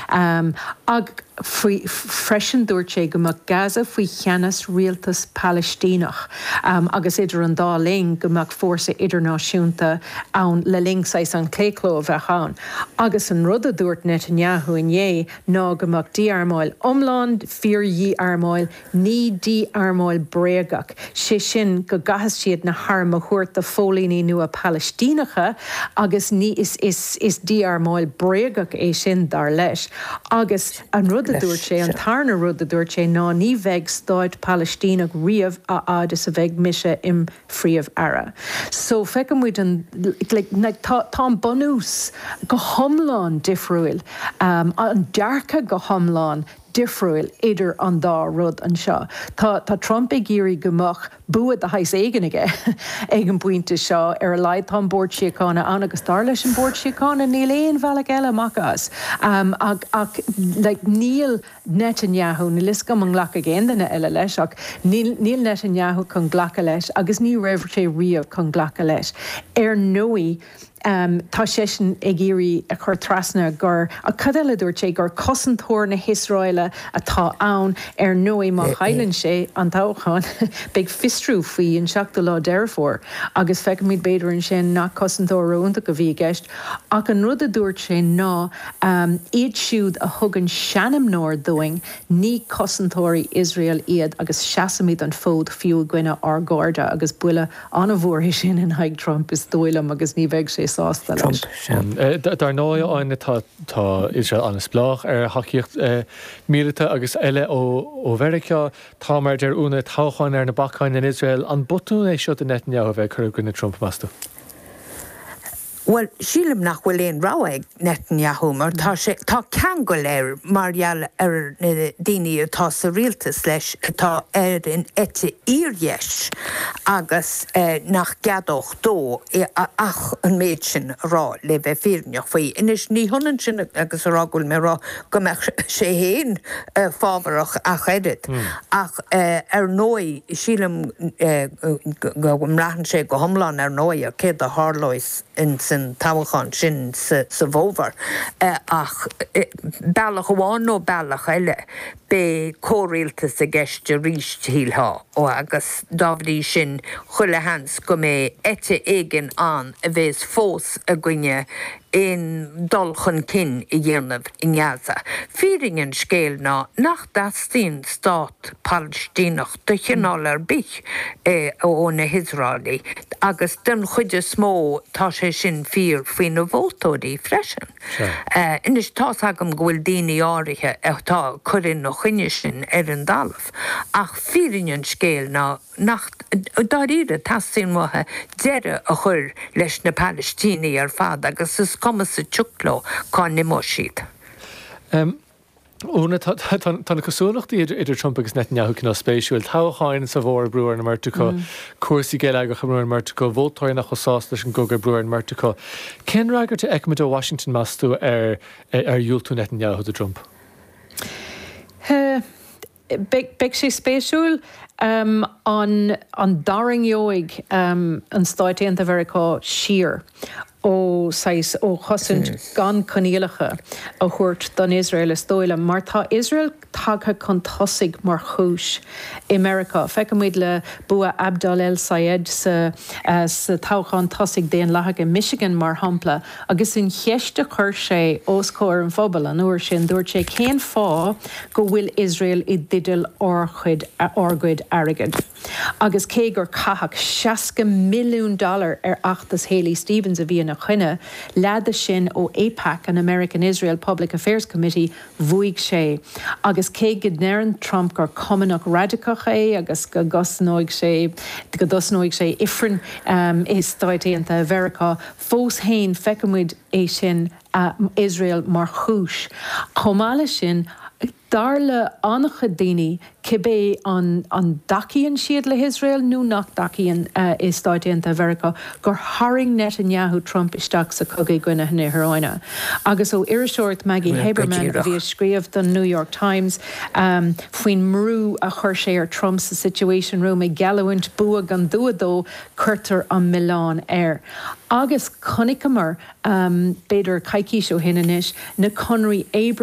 Agus faoi freisin dúirt sé go mbeadh Gaza faoi cheannas rialtas Palaistíneach agus idir an dá linn go mbeadh fórsa idirnáisiúnta ann le linn saghas an claochló a bheadh ann. Agus an rud a dúirt Netanyahu inné ná go mbeadh dí-armáil iomlán, fíor-dhí-armáil, Ní dí-armáil bréagach, sé sin go gcaithfeas siad na hairm a thabhairt do phóilíní nua Palaistíneacha agus ní, is, is, is dí-armáil bréagach é sin, dar leis. Agus an rud a dúirt sé, an tarna rud a dúirt sé ná ní bheidh stát Palaistíneach riamh a fhad is a bheidh mise im' Phríomh Aire. So feicimid an, like, tá, tá an bunús go hiomlán difriúil, an dearcadh go hiomlán difriúil idir an dá rud anseo. Tá Trump ag iarraidh go mbeadh bua de shaghas éigin aige ag an bpointe seo. Ar a laghad tá an Bord Síochána ann agus dar leis an Bord Síochána níl aon bhealach eile amach as. Ach níl Netanyahu, níl 'fhios agam an nglacfaidh aon duine eile leis, ach níl Netanyahu chun glacadh leis agus ní raibh sé riamh chun glacadh leis. Ar ndóigh. Tá seisean ag iarraidh a chur trasna gur, ach cad eile a dúirt sé, gur cosantóir na hIosráile atá ann. Ar ndóigh, má chailleann sé an toghchán, beidh fiosrú faoi an 7ú lá Deireadh Fómhair agus feicfimid b'fhéidir ansin nach cosantóir ró-iontach a bhí i gceist. Ach an rud a dúirt sé ná iad siúd a thugann seanmóir dúinn, ní cosantóirí Iosrael iad agus seasaimid an fód fiú i gcoinne ár gcairde agus buille An-mhór é sin in aghaidh Trump is dóigh liom agus ní bheidh sé sásta leis. Trump sin. Dar ndóigh, Áine, tá Iosrael an-spleách ar thacaíocht míleata agus eile ó Mheiriceá. Tá, mar a deir Úna, toghcháin ar na bacáin in Iosrael. An botún é seo do Netanyahu a bheith ag cur i gcoinne Trump, meas tú? Bhuel, sílim nach bhfuil aon rogha ag Netanyahu mar tá sé, tá ceangail air mar gheall ar na daoine atá sa rialtas leis atá ar an eite fhíordheis agus nach gceadódh dó ach an méid sin a rá, le bheith fírinneach faoi. Anois, ní hionann sin agus a rá go bhfuil mé ag rá go mbeadh sé fhéin fábharach ach oiread. Ach ar ndóigh, sílim go mbraitheann sé go hiomlán ar ndóigh, ar céard a tharlós ins an toghachán sin sa bhfómhar. Ach bealach amháin nó bealach eile, beidh comhrialtas i gceist arís, shílfeá. Agus dá bhrí sin, chuile sheans go mbeidh eite éigin ann a bhéas fós i gcoinne aon dul chun cinn a dhéanamh i nGaza. Fírinne an scéil ná nach dteastaíonn stát Palaistíneach de chineál ar bith ó na hIosraelaigh agus den chuid is mó tá sé sin fíor faoi na vótóirí freisin. Anois, tá's agam go bhfuil daoine áirithe atá ag cur ina choinne sin ar an dtalamh ach fírinne an scéil ná nach dáiríre, go dteastaíonn uathu deireadh a chur leis na Palaistínigh ar fad agus is cuma sa tsioc leo cá n-imeoidh siad. Úna, Tá na cosúlachtaí idir Trump agus Netanyahu cineál spéisiúil. Toghcháin sa bhfómhar, brú ar an mbeirt acu. Cúrsaí geilleagracha, brú ar an mbeirt acu. Vótóirí nach bhfuil sásta leis an gcogadh, brú ar an mbeirt acu. Cén fhreagairt a fheicfimid ó Washington, meas tú, ar dhiúltú Netanyahu do Trump? Beidh sé spéisiúil an dtarraingeoidh an Stáit Aontaithe Mheiriceá siar ó saghas ó chosaint gan coinníollacha a thabhairt don Iosrael is dóigh liom mar tá Iosrael tagtha chun tosaigh mar chúis i Meiriceá. Feicimid le bua Abdel El-Sayed sa toghchán tosaigh daonlathach i Michigan mar shampla Agus an cheist a chuir sé os comhair an phobail an uair sin, dúirt sé, Cén fáth go bhfuil Iosrael i dteideal ár chuid, ár gcuid airgead? Agus cé gur caitheadh seasca milliún dollar ar fheachtas Haley Stevens a bhí ina choinne, leath de sin ó Aipac, an American Israel Public Affairs Committee, bhuaigh sé. Agus cé go ndeireann Trump gur cumannach raidiceach é agus go dtosnóidh sé, go dtosnóidh sé Ifreann i Stáit Aontaithe Mheiriceá, Fós fhéin feicimid é sin, Iosrael mar chúis. Chomh maith le sin, dar le an-chuid daoine, cibé an an dtacaíonn siad le hIosrael nó nach dtacaíonn i Stáit Aontaithe Mheiriceá, gur tharraing Netanyahu Trump isteach sa cogadh i gcoinne na hIráine. Agus ó iriseoireacht Maggie Haberman a bhí ag scríobh don New York Times faoin mbrú a chuir sé ar Trump sa Situation Room ag geallúint bua gan dua dó, cuirtear an milleán air. Agus chonaiceamar, b'fhéidir coicís ó shin anois, na conraí Abraham.